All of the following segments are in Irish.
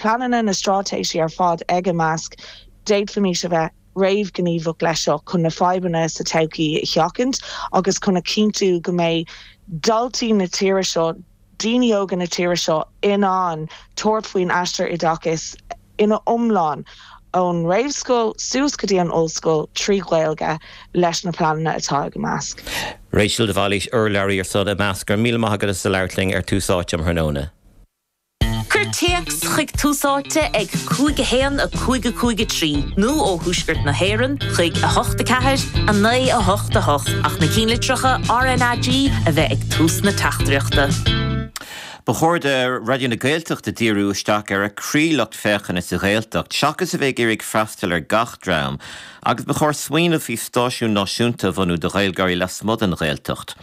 pleananna na straitéisí ar fad ag Imeasc, d'fhéadfaimís a bheith réamhghníomhach leis seo chun na fadhbanna sa todhchaí a sheachaint agus chun a chinntiú go mbeidh daltaí na tíre seo, daoine óga na tíre seo in ann tabhairt faoin aistear oideachais ina iomlán, ón réamhscoil suas go dtí an ollscoil, trí Ghaeilge leis na pleananna atá ag Imeasc. Rachel de Bhailís, Urlabhraí ar son Imeasc, Go raibh míle maith agat as ucht labhairt linn ar Tús Áite um thráthnóna. Cuir téacs chuig Tús Áite ag 5 1 5 5 3 nó ó Thuaisceart na hÉireann chuig 8 4 9 8 8 ach na cinnlitreacha RNAG a bheith ag tús na teachtaireachta. Ba chóir do Raidió na Gaeltachta díriú isteach ar a croí-lucht féachana sa Ghaeltacht seachas a bheith ag iarraidh freastal ar gach dream agus ba chóir smaoineamh faoi stáisiún náisiúnta a bhunú do Ghaeilgeoirí lasmuigh den Ghaeltacht.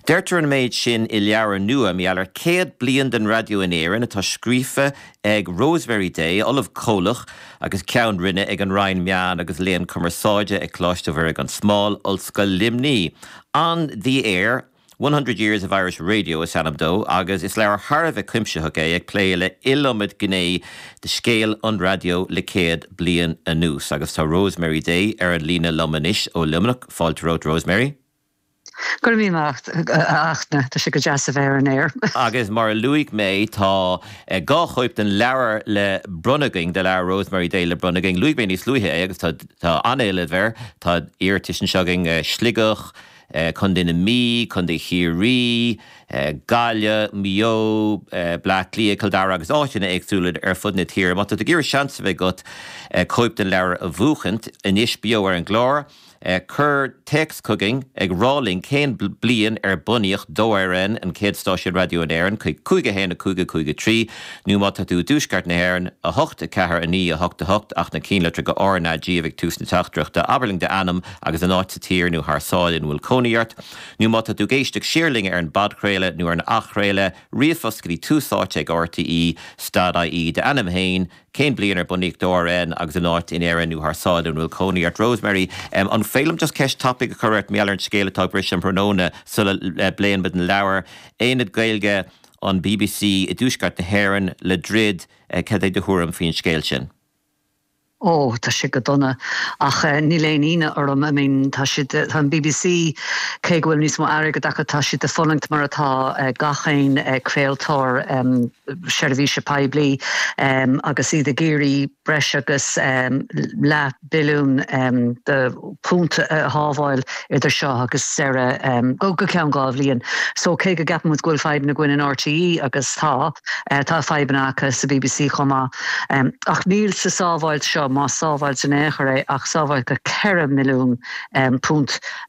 Deirtear an méid sin i leabhar nua mar gheall ar céad bliain den raidió in Éirinn, atá scríofa ag Rosemary Day, Ollamh Comhlach agus Ceann Roinne ag an Roinn Meán agus Léann Cumarsáide ag Coláiste Mhuire Gan Smál, Ollscoil Luimní. On The Air, One Hundred Years of Irish Radio is ainm dó agus is leabhar thar a bheith cuimsitheach é ag plé le iliomad gné de scéal an raidió le céad bliain anuas agus tá Rosemary Day ar an líne liom anois ó Luimneach. Fáilte romhat, Rosemary. Go raibh míle maith a Fhachtna, tá sé go deas a bheith ar an aer. Agus mar a luaigh mé, tá dhá chóip den leabhar le bronnadh againn, de leabhar Rosemary Day le bronnadh againn. Luaigh mé níos luaithe é agus tá an-éileamh air. Tá iarratais anseo againn, Sligeach, Contae na Mí, Contae Chiarraí, Gaillimh, Maigh Eo, Bleá Cliath, Cill Dara agus áiteanna éagsúla ar fud na tíre. Má tá tú ag iarraidh seans a bheith agat cóip den leabhar a bhuachaint, anois beo ar an gclár, Cuir téacs chugainn ag rá linn cén bliain ar bunaíodh 2RN, an chéad stáisiún raidió in Éirinn, chuig 5 1 5 5 3 nó, má tá tú i dTuaisceart na hÉireann, 8 4 9 8 8 ach na cinnlitreacha RNAG ag tús na teachtaireachta, abair linn d'ainm agus an áit sa tír nó thar sáile ina bhfuil cónaí ort. Nó má tá tú ag éisteacht siar linn ar an bpodchraoladh nó ar an athchraoladh, ríomhphost go dtí tús áite ag RTÉ, stad IE d'ainm féin, Cén bliain ar bunaíodh 2RN agus an áit in Éirinn nó thar sáile ina bhfuil cónaí ort? Rosemary, Em, an féidir liom just ceist tapaidh a chur ort mar gheall ar an scéal atá ag briseadh um thráthnóna sula eh bpléann muid an leabhar, Aonad Gaeilge an BBC i dTuaisceart na hÉireann, le druid, eh cad é do thuairim faoin scéal sin? Ó, tá sé go dona ach eh níl aon ionadh orm, I mean tá siad eh, tá an BBC cé go bhfuil níos mó airgead acu tá siad ag fulaingt mar atá eh gach aon eh craoltóir em, seirbhíse poiblí agus iad ag iarraidh breis agus leath billiún de phunt a shábháil idir seo agus seo, deireadh, go ceann dhá bhliain. So cé go gceapann muid go bhfuil fadhbanna againn in RTÉ, agus tá, tá fadhbanna acu sa bbc chomh maith, ach níl sa sábháilt seo, más sábháilt in aon chor é, ach sábháilt de £4 mhilliún.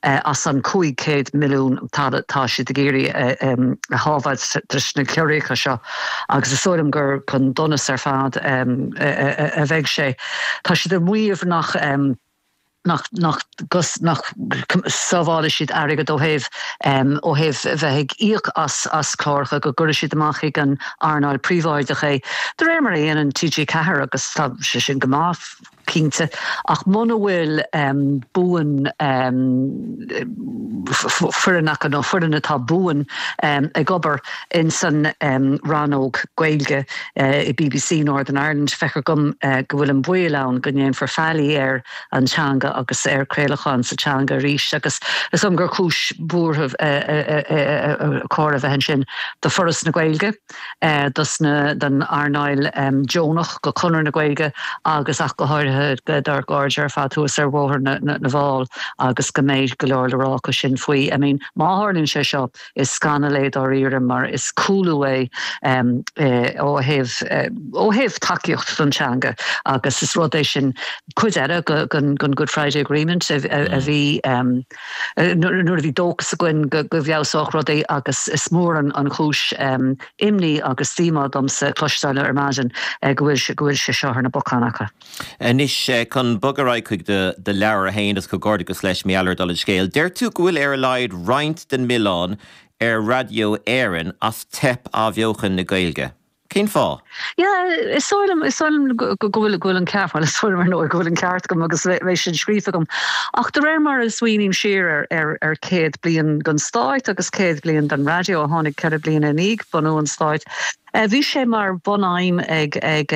As an 500 milliún atá siad ag iarraidh a shábháil tríd na ciorruithe seo, agus is dóigh liom gur chun donais ar fad a bheidh sé, tá siad ag maíomh nach sábhálfaidh siad airgead ó thaobh ó thaobh bheith ag íoc as cláracha, go gcuirfidh siad amach chuig an earnáil phríobháideach é, de réir mar a dhéanann TG4, agus tá sé sin go maith. cinnte, ach muna bhfuil buan foireann acu, nó foireann atá buan ag obair in san rannóg Gaeilge i BBC Northern Ireland, feictear dom go bhfuil an baol ann go ndéanfar faillí ar an teanga agus ar craolachán sa teanga arís, agus is dóigh liom gur cúis bhuartha ba chóir a bheith ansin do Foras na Gaeilge. don earnáil deonach, do Conradh na Gaeilge agus ach go háirithe dár gcairde ar fad thuas ar Bhóthar na bhFál agus go mbeidh go leor le rá acu sin faoi. I mean má tharlaíonn sé seo, is scannal é dáiríre mar is cúlú é ó thaobh ó thaobh tacaíocht don teanga agus is rud é, sin cuid eile den Good Friday Agreement a bhí nuair a bhí dóchas againn go bhfeabhsódh rudaí agus is mór an chúis imní agus díomá domsa cloisteáil ar maidin go bhfuil sé seo ar na bacáin acu. Anois chun bogadh ar aghaidh chuig do leabhar, a Iarfhlaith, is comhghairdeachas leis, mar a dúirt an scéal. Deir tú go bhfuil ar a laghad roinnt den milleán ar Raidió Éireann as teip athbheochan na Gaeilge. Cén fáth? Yeah, is dóigh liom, is dóigh liom go bhfuil, go bhfuil an ceart, bhuel is dóigh liom ar ndóigh go bhfuil an ceart agam nó ní bheadh, bheadh sin scríofa agam ach de réir mar a smaoiním siar ar, ar, ar céad bliain den Stát agus céad bliain den raidió a tháinig ceithre bliana i ndiaidh bhunú an Stáit, eh bhí sé mar bhun-aidhm ag, ag,